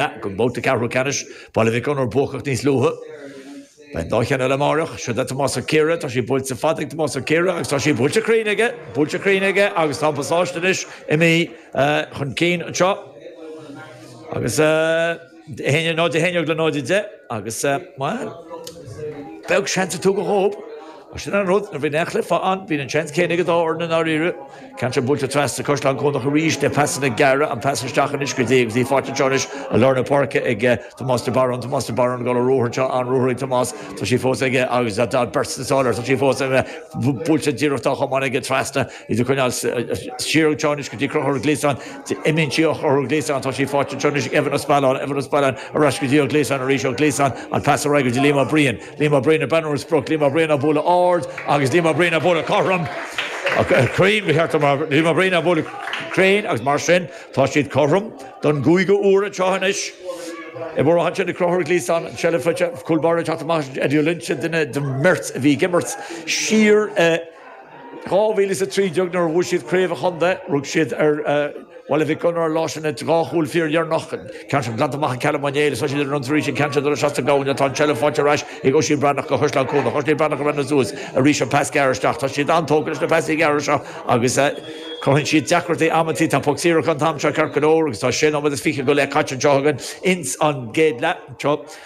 Ag Babhta 4ú Ceannais Baile Mhic Gonair buacach níos luaithe. Beidh an dá cheann eile amáireach. Seod é Tomás Ó Ciardha. Tá sí buailte fada ag Tomás Ó Ciardha agus tá sí buailte cruinn aige. Buailte cruinn aige agus tá an Pasáiste anois imithe chun cinn anseo. Agus é náid a haon déag le náid a deich agus ba bheag seans a tugadh dóibh. Sin an rud, nuair a bhíonn aon chluiche ann, bíonn an seans céanna ag an dá fhoireann i ndáiríre. Ceann seo buailte trasna sa Caisleán Cuanach arís le pasanna gearra, an pas isteach anois go dtí, go dtí faighte anseo anois i lár na páirce ag Tomás de Barún, Tomás de Barún, ag gabháil ar ruathar anseo, an-ruathar ag Tomás, tá sí fós aige agus tá beirt sna sála, tá sí fós aige, buailte díreach dá chamán aige trasna, iad a choinneáil siar anseo anois go dtí Conchúr Ó Gliasáin, imíonn sí ó Chonchúr Ó Gliasáin, tá sí faighte anseo anois ag Evan Ó Spealáin, Evan Ó Spealáin ar ais go dtí Ó Gliasáin arís, Ó Gliasáin, an pas ar aghaidh go dtí Liam Ó Briain. Liam Ó Briain ag breathnú ar an sprioc, Liam Ó Briain á bhualadh ard agus Liam Ó Briain á bhualadh cothrom, cruinn ba cheart, Liam Ó Briain á bhualadh cruinn agus mar sin tá siad cothrom don gcúigiú uair anseo anois i bhfoirm an tseilbh. Conchúr Ó Gliasáin an tseilbh faighte, cúl báire ag teacht amach, Eddie Ó Loinnsigh, duine den mbeirt a bhí ag imirt siar i 2013 nuair a bhuaigh siad Craobh an Chontae. Rug siad ar Bhaile Mhic Gonair an lá sin le dhá chúl fíordheireanach an ceann sin glanta amach ag Callum Ó Néill. Is tá siad ar an ionsaí arís an ceann seo nuair a shas an Gabhann. Tá an tseilbh faighte ar ais ag Oisín Breathnach do Chaisleán Cuanach. Oisín Breathnach ag breathnú suas arís an pas gearr isteach. Tá siad an-tógtha leis na pasanna gearra seo agus cruthaíonn siad deacrachtaí amantaí. Tá poc saor acu an t-am seo ceart go leor agus tá sé nóiméad is fiche go leith caite anseo againn ins an gcéad leath.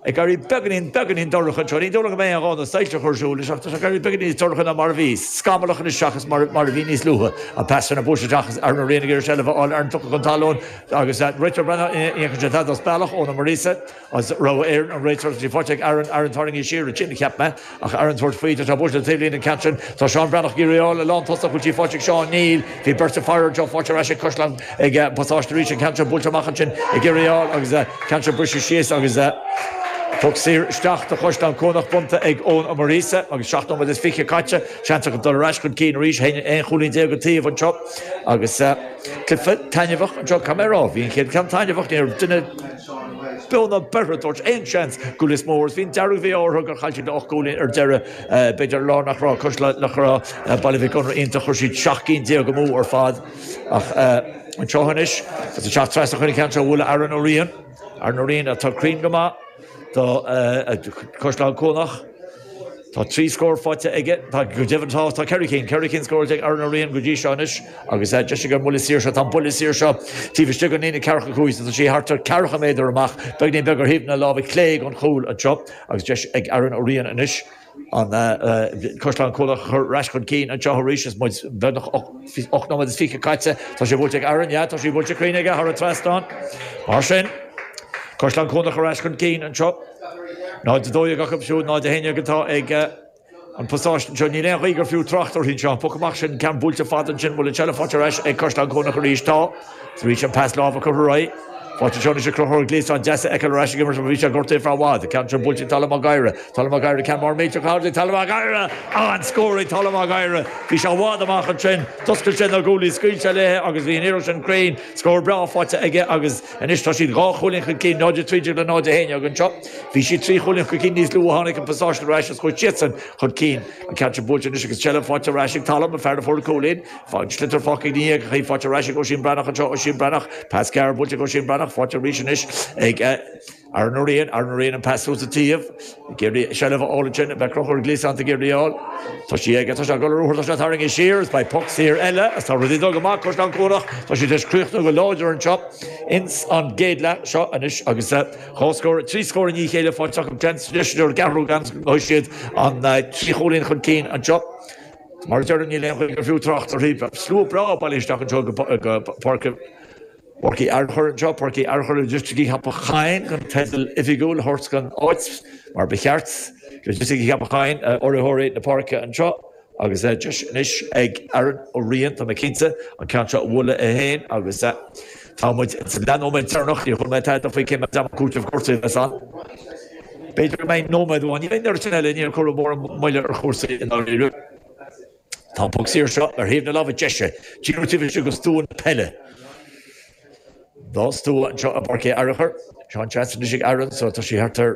Ag éirí beagainín beagainín dorcha anseo. Ní dóigh liom go mbeidh aon ghá na soilse a chur ar siúl anois ach tá sé ag éirí beagainín níos dorcha ná mar a bhí. Scamallach anois seachas mar a bhí níos luaithe. An pas trasna buailte isteach is Aaron Ó Riain ag iarraidh seilbh a fháil ar an Phioc chun talún agus an réiteoir ag breathnú, ní fheiceann sé tada as bealach Eoin Ó Muiríosa as Rogha Éireann, an réiteoir, tá sí faighte ag Aaron. Aaron, tarraingíodh siar ansin é, cheap mé. Ach Aaron ag tabhairt faoi, tá buailte taobh linn an ceann sin, tá Seán Breathnach ag iarraidh í a fháil a lán tusa a bhfuil sí faighte ag Seán, níl. Bhí beirt ag faire air, tá sí faighte ar ais ag Caisleán ag an bPasáiste arís an ceann seo buailte amach ansin ag iarraidh í a fháil agus an ceann seo briste síos agus poc saor isteach do Chaisleán Cuanach bronnta ag Eoin Ó Muiríosa agus seacht nóiméad is fiche caite. Seans acu dul ar ais chun cinn arís. Is iad aon chúilín déag an taobh anseo agus cluiche taitneamhach anseo. Caithfidh mé a rá. Bhí an chéad ceann taitneamhach. Ní raibh duine. Beo ná beirthe, ag tabhairt aon seans do Lios Mór is bhí an dearg-mhí-ádh orthu gur chaill siad le ocht gcúilín ar deireadh. B'fhéidir lá nach raibh cosúil le, nach raibh Baile Mhic Gonair iontach chuir siad seacht gcinn déag amú ar fad ach anseo anois agus ag teacht trasna chun an ceann seo a bhualadh Aaron Ó Riain. Aaron Ó Riain atá cruinn go maith do Chaisleán Cuanach. Tá trí scór faighte aige, go deimhin tá ceithre cinn, ceithre cinn scóráilte ag Aaron Ó Riain go dtí seo anois agus deis aige ón mbuille saor seo, tá an buille saor seo taobh istigh den líne ceathracha cúig, tá sí thart ar ceathracha méadar amach, beagáinín beag ar thaobh na láimhe clé den chúl anseo agus deis ag Aaron Ó Riain anois an Caisleán Cuanach a chur ar ais chun cinn anseo arís is muid beagnach ocht Ocht nóiméad is fiche caite. Tá sé buailte ag Aaron, yeah, tá sí buailte cruinn aige, thar an trasnán. Mar sin, Caisleán Cuanach ar ais chun cinn anseo. 0-12 acu siúd, 0-11 atá ag eh, an Pasáiste anseo. Níl aon ghaoth gur fiú trácht uirthi anseo. Poc amach sin, ceann buailte fada ansin, bhfuil an tseilbh faighte ar ais ag Caisleán Cuanach arís. Tá. Tar éis an pas láimhe a chur ar aghaidh, faighte anseo anois ag Crochúr Gléasáin, deas é a fheiceáil ar ais ag imirt mar bhí sé gortaithe ar feadh i bhfad. Ceann sin buailte ag Tadhg Mac Gáire. Tadhg Mac Gáire, ceann mór millteach ard ag Tadhg Mac Gáire. An scór ag Tadhg Mac Gáire. Bhí sé i bhfad amach ansin. D'oscail sé na guaillí, scaoil sé léi agus bhí an iarracht sin cruinn. Scór breá faighte aige agus anois tá siad dhá chúilín chun cinn, 0 13 le 0 11 againn anseo. Bhí siad trí chúilín chun cinn níos luaithe, tháinig an Pasáiste ar ais is chuaigh siadsan chun cinn. An ceann sin buailte anois agus an tseilbh faighte ar ais ag Tadhg, an fear a fuair an cúilín. Fág sliotar fágtha ina dhiaidh aige, faighte ar ais ag Oisín Breathnach anseo Oisín Breathnach, pas gearr buailte ag Oisín Breathnach, faighte arís anois ag Aaron Ó Riain, Aaron Ó Riain an pas suas an taobh, ag iarraidh seilbh a fháil ansin, beidh Crochúr Gléasáin ag iarraidh í a fháil. Tá sí aige, tá sé ag dul ar ruathar, tá sé tarraingthe siar agus beidh poc saor eile agus tá rudaí ag dul go maith, Caisleán Cuanach, tá siad tar éis críochnú go láidir anseo ins an gcéad leath seo anois agus dhá scór, trí scór i ndiaidh a chéile faighte acu, deis, deis, deis ar an gceathrú ceann, beidh siad an trí chúilín chun cinn anseo. Mar a deirim, níl aon ghaoth gur fiú trácht uirthi. Tá slua breá ag bailiú isteach anseo go Páirc Uí Fhearchair anseo, Páirc Uí Fhearchair Loighisticí Cheapach Choinn, chun teideal oifigiúil a thabhairt don áit, mar ba cheart, Loighisticí Cheapach Choinn urraitheoirí na páirce anseo, agus deis anois ag Aaron Ó Riain, tá mé cinnte, an ceann seo a bhualadh é féin agus. Tá muid sa dá nóiméad deireanach, níor chuala mé tada faoi cé méid ama cúiteamh cúrsaí a bheas ann. B'fhéidir go mbeidh nóiméad amháin againn, ar an sin eile níor cuireadh mórán moille ar chúrsaí i ndáiríre. Tá an poc saor seo ar thaobh na láimhe deise, díreach taobh istigh de stua na peile. Dhá stua anseo i bPáirc Uí Fhearchair. An seans anois ag Aaron, so tá sí thart ar,